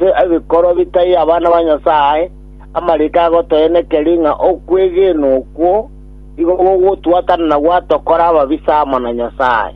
Ebikoro bitai abana ba Nyasae, amariiko agotoenekeri ng'a okwegena okwo nigo gogotwatana na gwatokora ababisa amo na Nyasae,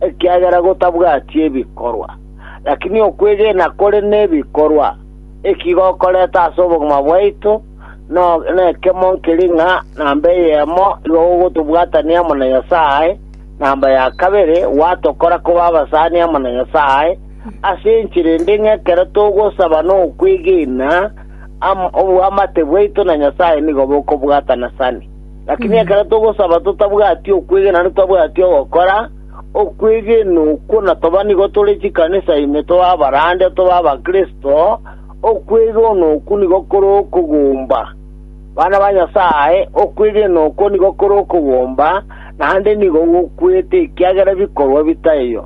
ekiagera gotabwati ebikorwa. Lakini okwegena kore nebikorwa, eki gokoreta ase obogima bwaito nekemo nkeri ng'a namba eyemo nigo gogotobwatania amo na Nyasae, namba ya kabere gwatokora koba abasani amo na Nyasae, ase enchera ende ng'a ekero togosaba nokwegena, am- oboamate bwaito na Nyasae nigo bokobwatana sane. Lakini ekero togosaba totabwati okwegena naende twabwati ogokora, okwegena okwo na toba nigo tore chikanisa ime tobe abarande tobe abakristo, okwegena okwo nigo kore okogomba. Bana ba Nyasae, okwegena okwo nigo kore okogomba, naende nigo gokwete ekiagera bikorwa bitaiyo.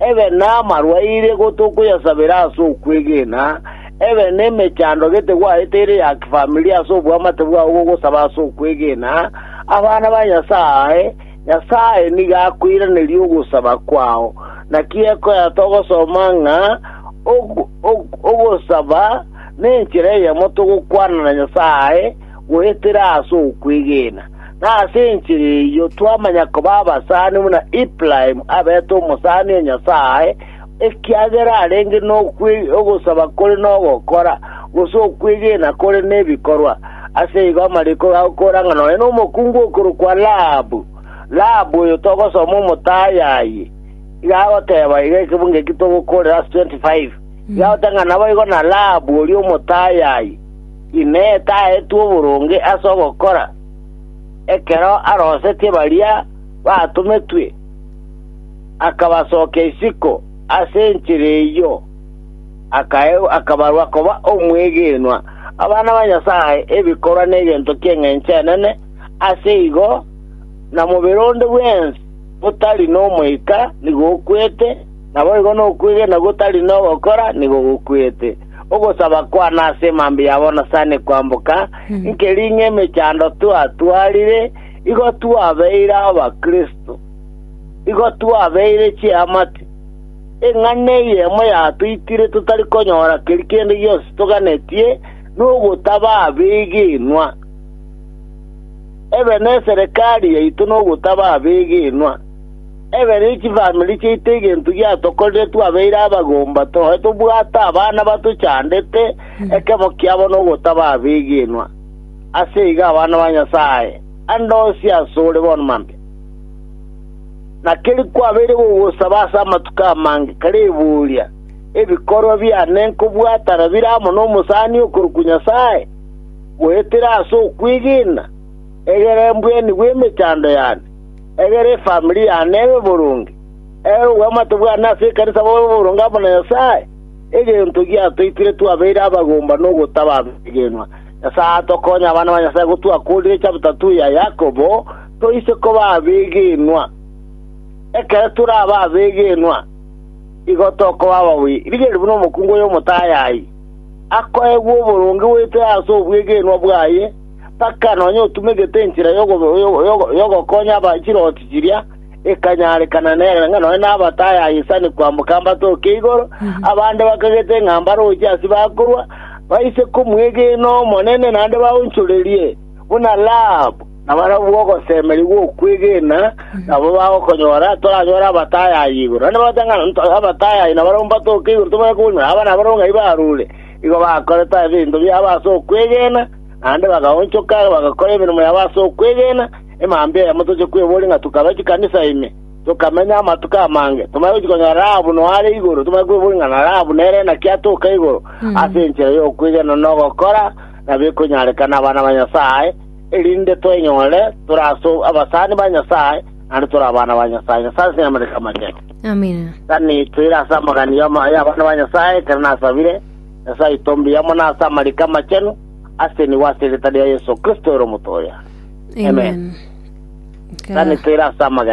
Ebe namarwaire gotokoyasabera ase okwegena, ebe nemechando gete gwarete ere ya kifamilia ase oboamate bwao bw'ogosaba ase okwegena, abana ba Nyasae, Nyasae nigo akoiraneria ogosaba kwao. Naki ekoya togosoma ng'a ogosaba nenchera eyemo togokwana na Nyasae, goetera ase okwegena, na ase enchera eyio twamanya koba abasani buna Ibrahimu abete omosani o Nyasae, ekiagera arenge nogosaba kore nogokora, gose okwegena kore nebikorwa. Ase igo amariko agakora ng'a nore nomokungu okorokwa Rahabu. Rahabu oyo togosoma omotaai aye, iga agoteba, iga ekebungo eki togokoorera ase 25, iga agoteba ng'a naboigo na Rahabu oria omotaai aye. Inee taetwe oboronge ase ogokora, ekero arosetie baria batometwe, akabasokia isiko ase enchera eyio, akabarwa koba omwegenwa, abana ba Nyasae, ebikorwa negento ki'engencho enene, ase igo na mobere onde bwensi botari nomoika nigo okwete, naboigo nokwegena gotari nogokora nigo gokwete. ogosaba kwane ase emambia ya bonasani kwamboka, nkeri ng'emechando twatwarire, igo twabeire abakristo, igo twabeire chiamate, eng'ana eyemo yatoitire totari konyora keri kende gionsi toganetie, nogotaba abegenwa. Ebe neserekari yaito nogotaba abegenwa. Ekero chifamiri chiaito egento giatokorire twabeire abagomba toe tobwate abana batochandete ekemo kiabo nogotaba abegenwa. Ase igo abana ba Nyasae ande onsi asore bono mambia. Na keri kwabeire gogosaba ase amatuko amange kare eboria, Ebikorwa biane nkobwatana bire amo nomosani okorokwa Nyasae, goetera ase okwegena, egere mbwenigwe emechando yane? Egere efamiri yane ebe boronge, egere obwamate bwane ase ekanisa bobe boronge amo na Nyasae, egento giatoitire twabeire abagomba nogotaba abegenwa. Nyasae atokonye abana ba Nyasae go twakoorire chapter 2 ya Yakobo, toise koba abegenwa. Ekero torabe abegenwa, igo tokoba ababii. Rigereria buna omokungu oyo omotayayi akoegwa oboronge goetera ase obwegenwa bwaye, mpaka nonya otumegete enchera y'ogo- y'ogo- y'ogo- y'ogokonya aba chirooti chiria, ekanyarekana nere ng'a nonya nabatayayi sani kwamboka mbatoke igoro, abande bakagete ng'a mbaroche ase bakorwa, baise komwegena Omonene naende baonchorerie, buna Rahab. Na barabwo ogosemeria gw'okwegena nabo bagokonyora, toranyore abatayayi igoro. Naende bagote ng'a nto- abatayayi nabarabwo mbatoke igoro, tobaye koboria buna, aba nabarabwo ng'ai barure? Igo bakorete ebinto biabo ase okwegena, naende bagaonchoka bagakora emeremo yabo ase okwegena, emambia eyemo toche kweboria ng'a tokabe chikanisa ime, tokamenya amatuko amange, tomanye gochia konyora Rahabu noyo are igoro, tomanye kweboria ng'a na Rahabu nere naki atoka igoro, ase enchera y'okwegena na ogokora nabekonyarekana abana ba Nyasae, erinde twenyorere tore ase abasani ba Nyasae, naende tore abana ba Nyasae. Nyasae ase nyamareke amachenu. Amina. Sani toire ase amagani y'ama- y'abana ba Nyasae, ekero nasabire. Nyasae oito mbuya amo nase amariko amachenu ase nigo ase eretare ria Yeso Kristo ere omoto oye. Amen. Amen. Nka- Tanete ere ase amagena.